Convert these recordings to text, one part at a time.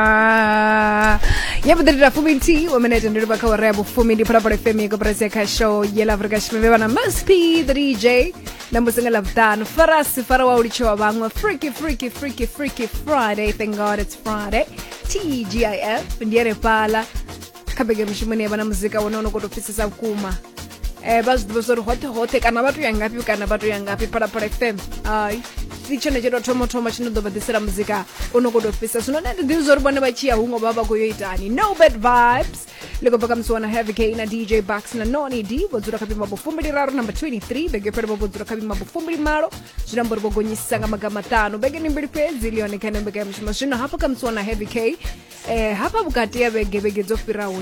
Ah, ya vhuḓi ndi fumi nthihi wa minete ndi livha kha wara ya vhufumi ndi phalaphala fm ya koporasi ya kha show ye la afrika tshipembe vhana msp the dj na mbusi nga ḽavhuṱanu farasi fara wa u litshewa vhaṅwe freaky freaky freaky freaky friday thank god it's friday tgif ndi ene fhala kha bege mishumoni ya vha na muzika wone ono koto pfisesa vhukuma um vha zwi ḓivha zwa uri hoṱhe hoṱhe kana vha to ya ngafhi kana vha to ya ngafhi phalaphala fm ai si tshone tsho tou thoma thoma tshi no ḓo vha ḓisela muzika u no koto fhisa zwino nṋe ndi ḓivhi zwa uri vhone vha tshi ya huṅwe vha vha khou yo itani no bad vibes ḽi khou bva kha musi wana heavy k na dj bucks na noni d vho dzula kha vhimabo fumbili raru number 23 bege fhele vho dzula kha vhimabo fumbili malo zwi amba uri vho gonyisisa nga maga maṱanu bege ni mbili fhedzi ḽi yone kha ine mbekanya mushumo zwino hafho kha musi wana heavy k eh hafha vhukati ya vhege vhege dzo fhiraho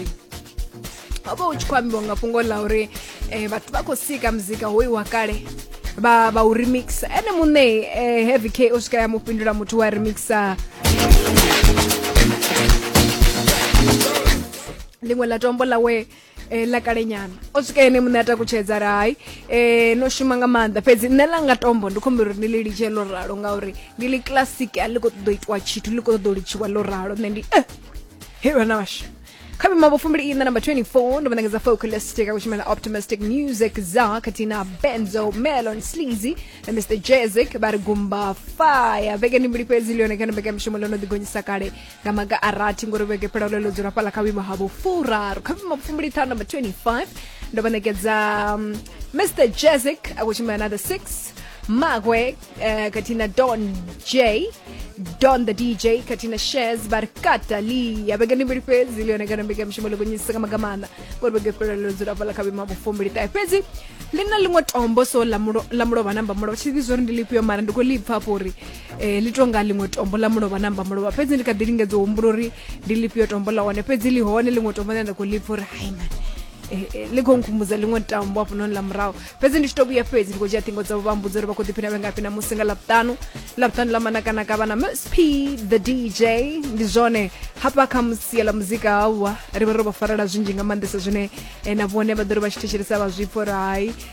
ho vha hu tshi khou ambiwa nga fhungo ḽa uri um vhathu vha khou sika muzika hoyu wa kale vha vha u remix ene muṋe um heavy k o swika ya mu fhindula muthu wa remixa ḽiṅwe ḽa tombo ḽawe e, ḽa kalenyana o swika ene muṋe a takutshedza ri hai e, no shuma nga maanḓa fhedzi nṋe ḽa nga tombo ndi khombela uri ni ḽi litshe ḽo ralo ngauri ndi ḽi classic a ḽi khou ṱoḓa u itiwa tshithu ḽi khou ṱoḓa u litshiwa ḽo ralo nṋe ndi eh, he vhana washu kha mimambo fumbili ina namba 24 ndo vhanengedza focalistic akushumela optimistic music za katina benzo melon sleazy na mr jezik vha ri gumba fire vhege ndi mbili fhedzi liyone kana mbekamishumo ḽo no ḓigonyisa kale nga maga a rathi ngori vhege fhelelo ḽo dzula fhala kha vhuimo ha vhufuraru kha vhuimo vhufumbili ṱhanu number 25 ndo vha ṋekedza mr um, jazik a khou tshimbila na the six magwe eh, khathihi na don j don the dj khathihi na shes vha ri kata lia vhege ndi mbili fhedzi ḽi yone kana mbekanyamushumo ḽi gonyisisa nga maga maanḓa ngori vhege fhelelo ḽo dzula fhala kha vhuimo ha vhufumbili ṱahe fhedzi ḽi na ḽiṅwe tombo so ḽa mulovha namba mulovha tshi ḓivhi zwo ri ndi ḽifhio mara ndi khou ḽi pfa fho uri e, ḽi tou nga ḽiṅwe tombo ḽa mulovha na mba mulovha fhedzi ndi kha ḓi lingedza u humbula uri ndi ḽifhio tombo ḽa hone fhedzi ḽi hone ḽiṅwe tombo ḽine nda khou lipfa uri hai mani eh, eh, ḽi khou nkhumbudza ḽiṅwe tambo hafhanoni ḽa murahu fhedzi ndi tshi to vhuya fhedzi ndi khou dzhia ṱhingo dzavho vha mbudza uri vha khou ḓiphina vhengafhi na musi nga ḽavhuṱanu ḽavhuṱanu ḽa manakanaka vha na msp the dj ndi zwone hafha kha musia ḽa muzika hauwa ri vha ro vha farela zwinzhi nga maanḓesa zwine eh, na vhone vha ḓo ri vha tshi thetshelesa vha zwipfa uri hai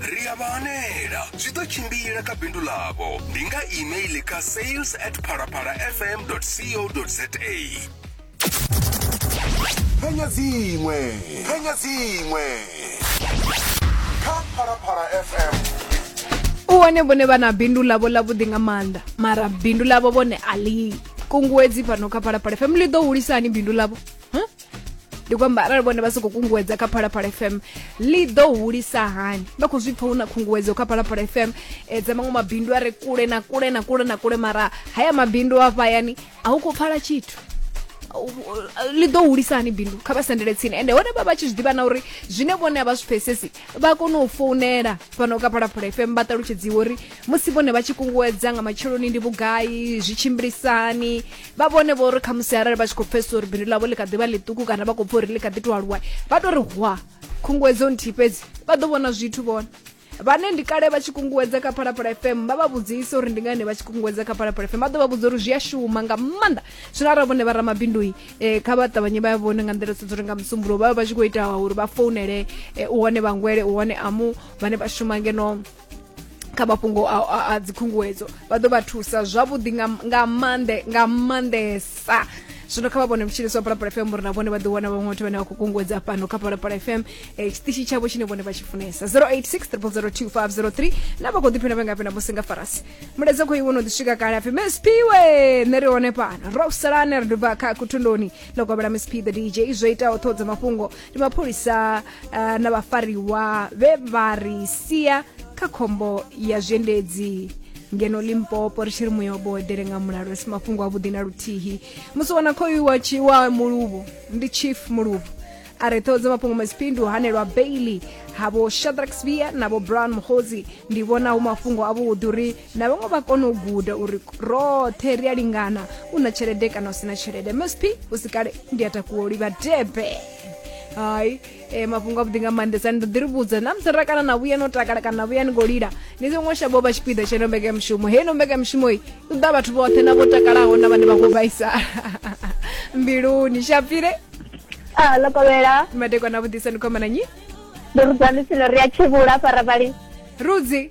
ri a vha hanela zwi ḓo tshimbila kha bindu ḽavho ndi nga email kha sales at phalaphala fm co za phenya dziṅwe phenya dziṅwe kha phalaphala fm u wane vhone vha na bindu ḽavho ḽavhuḓi nga maanḓa mara bindu ḽavho vhone a ḽi kunguwedzi fhano kha phalaphala fm ḽi ḓo hulisa hani bindu ḽavho ndi kwamba arali vhone vha sokou kunguwedza kha phalaphala fm ḽi ḓo hulisa hani vha khou zwi pfa hu na khunguwedzo kha phalaphala fm e, dza maṅwe mabindu a re kule na kule na kule na kule mara haya mabindu a fhayani a hu khou pfala tshithu ḽi ḓo hulisa hani bindu kha vha sendele tsini ende hone vha vha tshi zwi ḓivha na uri zwine vhone a vha zwi pfesesi vha kone u founela fhano ka phalaphala fm vha ṱalutshedziwa uri musi vhone vha tshi kunguwedza nga matsheloni ndi vhugai zwi tshimbilisani vha vhone vho ri khamusi arali vha tshi khou pfesesa uri bindu ḽavho ḽi kha ḓivha ḽiṱuku kana vha khou pfha uri ḽi kha ḓi to aluwa vha to ri hwa khunguwedzo nthihi fhedzi vha ḓo vhona zwithu vhona vhane ndi kale vha tshi kunguwedza kha phalaphala fm vha vha vhudzisa uri ndi ngani vha tshi kunguwedza kha phalaphala fm vha ḓo vha vhudza uri zwi a shuma nga maanḓa zwino arali vhone vha ramabindui eh, kha vha ṱavhanye vha vhone nga nḓila sedza uri nga musumbulo vha vha vha tshi khou ita uri vha founele eh, u hone vhangwele u hone amu vhane vha shuma ngeno kha mafhungo a, a, a dzikhunguwedzo vha ḓo vha thusa zwavhuḓi nga, nga maanḓe nga maanḓesa zwino kha vha vhone mutshiniso wa palapala fm uri na vhone vha ḓi wana vhaṅwe vhathu vhane vha khou kunguwedza fhano kha palapala fm eh, tshiṱishi tshavho tshine vhone vha tshi funesa 086 002 na vha khou ḓiphina vhe ngafhi na musi nga farasi mulaedza khou iwo no ḓi swika kale apfi msp we nṋe ri hone fhano rosalane ri dubva kha kuthundoni ḽo kovhela msp the dj zwo itaho ṱhoho dza mafhungo ndi mapholisa uh, na vhafariwa vhe vha ri sia kha khombo ya zwiendedzi ngeno limpopo ri tshi ri muya wabo edele nga mulalo ri si mafhungo avhuḓi na luthihi musi wana khoyu wa tshi wa muluvhu ndi chief muluvhu a re ṱhoho dza mafhungo maziphindu hanelwa bailey havo shadrack svia navo brown muhozi ndi vhona hu mafhungo avhuḓi uri na vhaṅwe vha kone u guda uri roṱhe ri a lingana u na tshelede kana u si na tshelede msp u si kale ndi a takuwa u livha debe hai e, mafhungo avhuḓi nga maanḓesa ni ḓo ḓi ri vhudza na musi ra kana na vhuya no takala kana na vhuya ni khou lila ni songo shavho vha tshipiḓa tshe no mbeka mushumo he no mbeka mushumo i u ḓa vhathu vhoṱhe na vho takalaho na vhane vha khou vhaisala mbiluni shapire Ah, lo kovhela madekwana vhuḓisa ni khomana nyi ndo rudzani sino ri a tshivhula fara vhali rudzi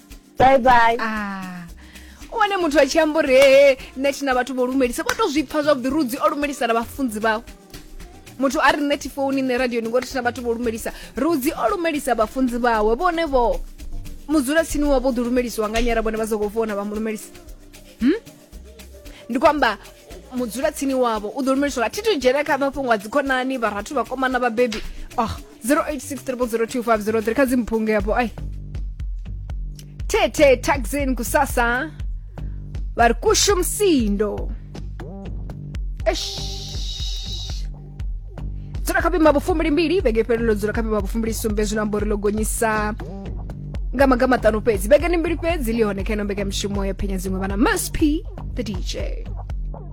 bye bye ah u wane muthu a tshi amba uri hee nṋe thi na vhathu vho lumelisa vha to zwi pfa zwavhuḓi rudzi o lumelisa na vhafunzi vhawe muthu a ri nṋe thi founi nṋe radioni ngori thi na vhathu vho lumelisa rudzi o lumelisa vhafunzi vhawe vhone vho mudzulatsini wavho ḓi lumelisiwa nga nyara vhone vha sokou founa vha mu lumelisa hmm? ndi kwamba mudzulatsini wavho u ḓo lumelisiwa thi to dzhena kha mafhungo a dzikhonani vharathu vhakomana vhabebi oh 0863002503 kha dzimphunge hapo ai tete taxin kusasa vari kusho msindo Eish. dzula kha vhuima vhufumbili mbili vhege fhelelo dzula kha vhuima vhufumbili sumbe zwino amba uri ḽo gonyisa nga maga maṱanu fhedzi vhegeni mbili fhedzi ḽi hone kha ino mbekamishumo ya phenya dziṅwe vhana msp the dj